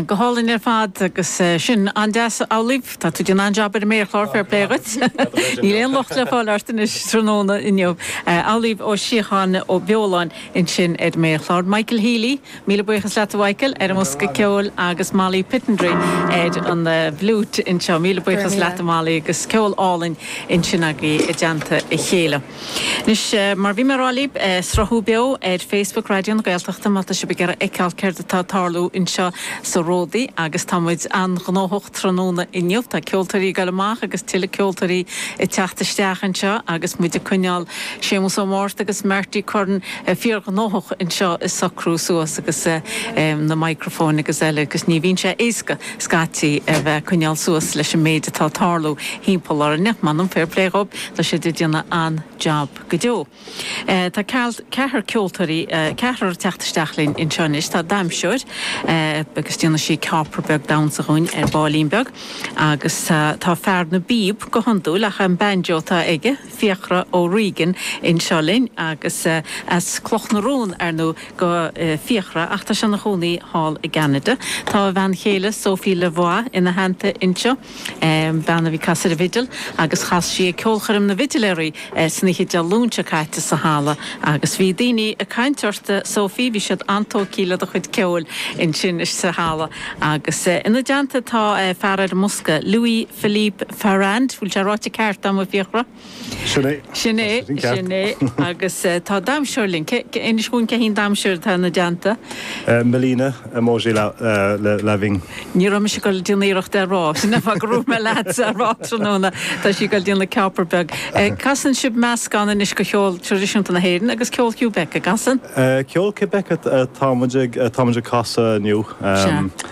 Go hálainn ar fad agus sin an-deas. Amhlaoibh, tá tú ag déanamh an-jab ar an méarchlár, fair play dhuit. Níl aon locht le fáil ort anois tráthnóna inniu. Amhlaoibh Ó Síocháin Ó Beoláin ansin ar an méarchlár. Michael Healy, míle buíochas leat a Mhichael, ar an mbosca ceoil agus Molly Pittendrigh ar an bhfliúit anseo. Míle buíochas leat a Molly agus ceol álainn ansin agaibh i dteannta a chéile. Anois, mar a bhí mé ag rá libh, sruthú beo ar Facebook Raidió na Gaeltachta má tá sibh ag iarraidh a fheiceáil céard atá ag tarlú anseo sa ródaí agus tá muid an-ghnóthach tráthnóna inniu. Tá ceoltóirí ag dul amach agus tuilleadh ceoltóirí ag teacht isteach anseo agus muid ag coinneáil Séamus Ó Márta agus Marty Curran fíorghnóthach anseo ag socrú suas agus na microphones agus eile agus ní bhíonn sé éasca scaití a bheith ag coinneáil suas leis an méid atá ag tarlú timpeall orainne. M'anam, fair play dhóibh. Tá siad ag déanamh an-jab go deo. Tá ceathrar ceoltóirí, ceathrar ag teacht isteach linn anseo anois. Tá damhsóir agus déanfaidh sí céapar beag damhsa dhúinn ar baillín beag. Agus tá fear na bpíob, go hiondúil, ach an banjo atá aige, Fiachra O'Regan, anseo linn agus as Cloch na Rón, ar ndú, do Fiachra, ach tá sé ina chónaí thall i gCanada. Tá a bhean chéile, Sophie Lavoie, ina theannta anseo. bean a bhí ag casadh ar an bhfidil agus chas sí ag ceolchoirm na bhfidiléirí san oíche Dé Luain seo caite sa halla agus bhí daoine ag caint ort a Sophie, bhí siad an-tógtha le do chuid ceoil ansin sa halla agus ina dteannta tá fear ar an mbosca, Louis-Philippe Farrand, bhfuil sé ráite ceart agam a Fiachra? Sin é. Sin é, sin é. Agus tá damhsóir linn. Inis dhúinn cé hí an damhsóir atá ina dteannta. Melina, emoji loving. Ní raibh mise ag dul ag déanamh iarracht é a rá. Sin an fáth go raibh mé leatsa a rá tráthnóna. Tá sí ag dul ag déanamh céapar beag. Casann sibh meascán anois de cheol traidisiúnta na hÉireann agus ceol Québec, an gcasann? Ceol Québec atá muid ag casadh inniu. Sea.